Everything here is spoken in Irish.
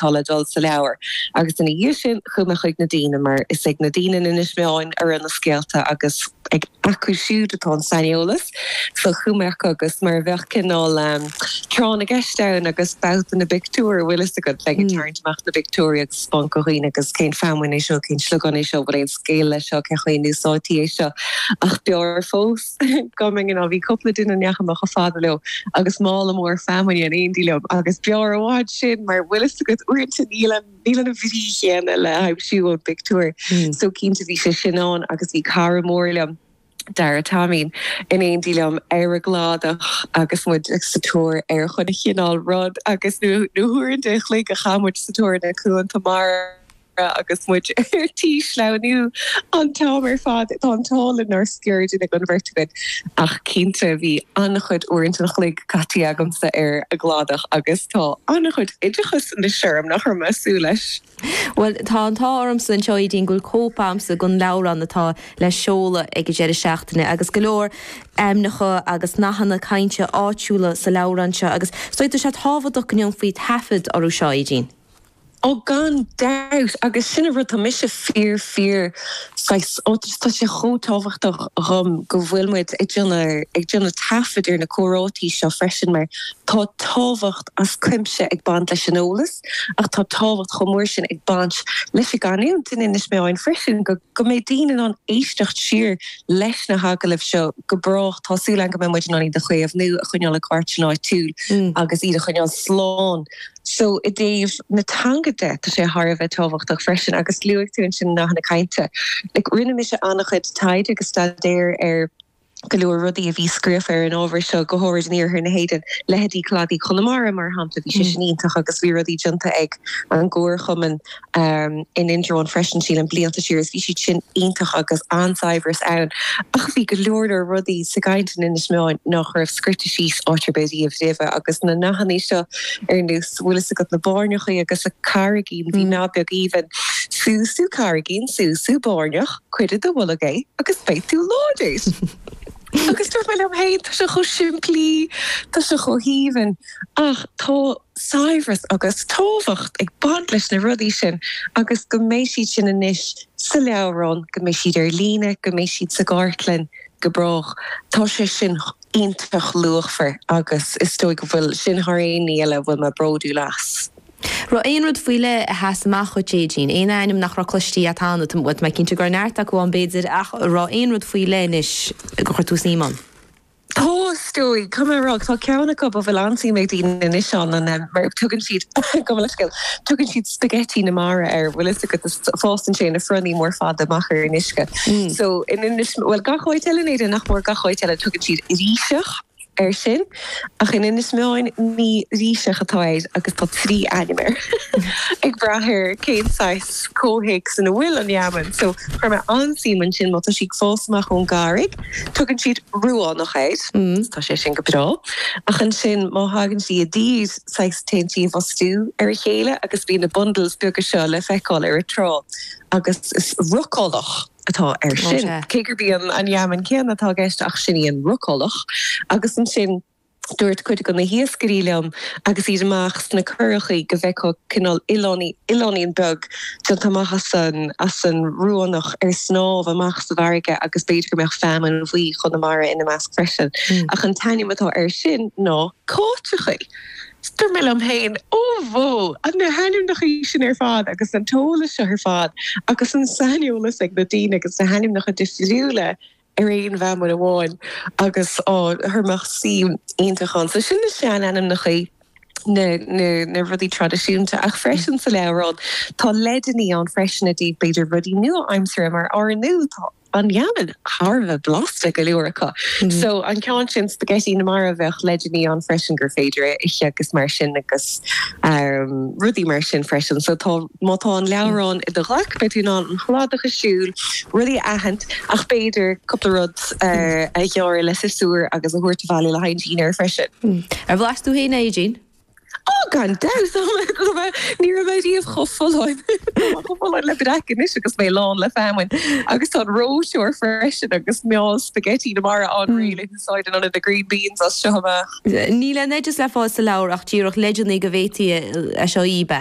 tá le dul sa leabhar. Agus ina dhiaidh sin chuaigh mé chuig na daoine, mar is ag na daoine in Inis Meáin a raibh na scéalta agus ag acu siúd atá an saineolas. So chuaigh mé chucu agus mar a bheadh cineál tráth na gceist ann agus babhta na bpictiúr, bhfuil fhios agat, like ag tarraingt amach na bpictiúirí agus spáint do dhaoine agus cén feamainn é seo, cén sliogán é seo, bhfuil aon scéal leis seo, cén chaoi a n-úsáidtí é seo. Ach b'fhearr fós. Go mbeinn ann. Bhí cúpla duine a ndeachaigh mé chomh fada leo agus mála mór feamainne in éindí liom agus b'fhearr i bhfad sin mar bhfuil fhios agat uaireanta níl an níl an bhrí chéanna le haimsiú ón bpictiúir so cinnte bhí sé sin ann agus bhí cara mór liom, Dara Taimín, in éindí liom ar an gcladach agus muid sa tóir ar chuile chineál rud agus na huaireanta an chloig a chaith muid sa tóir na cuanta mara. agus muid ar tí sleamhnú an t-am ar fad, tá an t-ádh linn nár sciorr duine den bheirt againn. Ach cinnte, bhí an-chuid uaireanta an chloig caití agamsa ar an gcladach agus tá an-chuid oideachais anois orm nach raibh mé ag súil leis. Bhuel, tá an t-ádh ormsa anseo, Aedín, go bhfuil cóip agamsa den leabhrán atá le seoladh ag an deireadh seachtaine agus go leor ainmneacha agus nathanna cainte áitiúla sa leabhrán seo agus, is dóigh, tá sé tábhachtach go ndéanfaí taifead orthu seo, Aedín. Ó gan dabht agus sin an rud tá mise fíor fíor saghas ó tá sé chomh tábhachtach dhom go bhfuil muid ag déanamh ag déanamh taifead ar na comhráití seo freisin mar tá tábhacht as cuimse ag baint leis an eolas ach tá tábhacht chomh mór sin ag baint leis an gcanúint in Inis Meáin freisin go go mbeidh daoine in ann éisteacht siar leis na hagallaimh seo go brách tá súil agam go mbeidh muid in ann iad a chaomhnú a choinneáil i gcartlann áitiúil agus iad a choinneáil slán So i dtaobh na teanga de, tá sé thar a bheith tábhachtach freisin agus luaigh tú ansin nathanna cainte. Like rinne mise an-chuid taighde agus staidéir ar go leor rudaí a bhí scríofa ar an ábhar seo, go háirid in iarthar na hÉireann, leithéidí Cladaí Chonamara mar shampla, bhí sé sin iontach agus bhí rudaí déanta ag an gComharchumann um in Indreabhán freisin sílim blianta siar is bhí siad sin iontach agus an-saidhbhreas ann ach bhí go leor leor rudaí sa gcaint in Inis Meáin nách raibh scríte síos áit ar bith riamh roimhe agus na nathannaí seo ar nós bhfuil fhios agat na báirneachaí agus an carraigín bhí nath beag aoibhinn Sú, sú carraigín, sú, sú báirneach, cuir i do bholg é agus beidh tú láidir! agus dúirt mé liom fhéin tá sé chomh simplí tá sé chomh haoibhinn ach tá. saibhreas agus tábhacht ag baint leis na rudaí sin agus go mbeidh siad sin anois sa leabhrán, go mbeidh siad ar líne, go mbeidh siad sa gcartlann go brách. Tá sé sin iontach luachmhar agus is dóigh go bhfuil sin thar aon ní eile a bhfuil mé bródúil as. raibh aon rud faoi leith a sheas amach dhuit, Aedín? Aon ainm nach raibh cloiste agat cheana? Tá mé cinnte go raibh neart acu ann b'fhéidir ach raibh aon rud faoi leith anois gur chuir tú suim ann? Theastaigh, cá mbeadh rud, tá ceann acu a bhfuil an-suim ag daoine anois ann, an em, mar tugann siad, gabh mo leithscéal, tugann siad spaghetti na mara air, bhfuil fhios agat, is fásann sé ina fronnaí mór fada amach ar an uisce. So, in Inis, bhuel gach áit eile in Éirinn nach mór, gach áit eile tugann siad ríseach air sin, ach in Inis Meáin ní ríseach atá air agus tá trí ainm air, ag brath ar cén saghas comhthéacs ina bhfuil an fheamainn. So, chuir mé an-suim ansin, má tá sí ag fás amach ón gcarraig, Tugann siad ruánach air. Tá sé sin go breá. Ach ansin má thagann sí i dtír saghas téann sí i bhfostú ar a chéile agus bíonn na bundles beaga seo le feiceáil ar an trá agus is rucálach atá air sin. Cé gurb í an fheamainn céanna atá i gceist ach sin í an rucálach. Agus ansin. Dúirt cuid go na hiascairí liom agus iad amach sna curachaí go bhfeicfeá cineál oileáinín beag déanta amach as an ruánach ar snámh amach sa bhfarraige agus b'fhéidir go mbeadh feamainn bhuí Chonamara ina measc freisin. Ach an t-ainm atá air sin ná cáiteachaí. Dúirt mé liom féin, Ó bhó, na hainmneachaí sin ar fad agus an t-eolas seo ar fad agus an saineolas ag na daoine agus na hainmneacha difriúla ar aon fheamainn amháin agus á chuir mé suim iontach ann. So sin na seanainmneachaí, na na rudaí traidisiúnta. Ach freisin sa leabhrán tá leideannaí ann freisin i dtaobh b'fhéidir rudaí nua-aimseartha mar ar ndóigh tá an fheamainn thar a bheith blasta go leor acu. So an ceann sin Spaghetti na Mara bheadh leideannaí ann freisin gur féidir é a ithe agus mar sin agus em rudaí mar sin freisin. So tá. Má tá an leabhrán i do ghlaic, beidh tú in ann an cladach a shiúl, rudaí a aithint, ach b'fhéidir cúpla rud a ghearradh le siosúr agus a thabhairt abhaile le haghaidh dinnéir freisin. Ar bhlais tú fhéin é, a Aedín? Ó, gan dabht! Ní raibh mé riamh chomh folláin. Tá mé chomh folláin le breac anois agus mé lán le feamainn. Agus tá an reoiteoir freisin agus meall spaghetti na mara ann réidh le húsáid in ionad na green beans as seo amach. Níl aon oideas le fáil sa leabhar ach díreach leideanna go bhféadfaí é seo a íbe.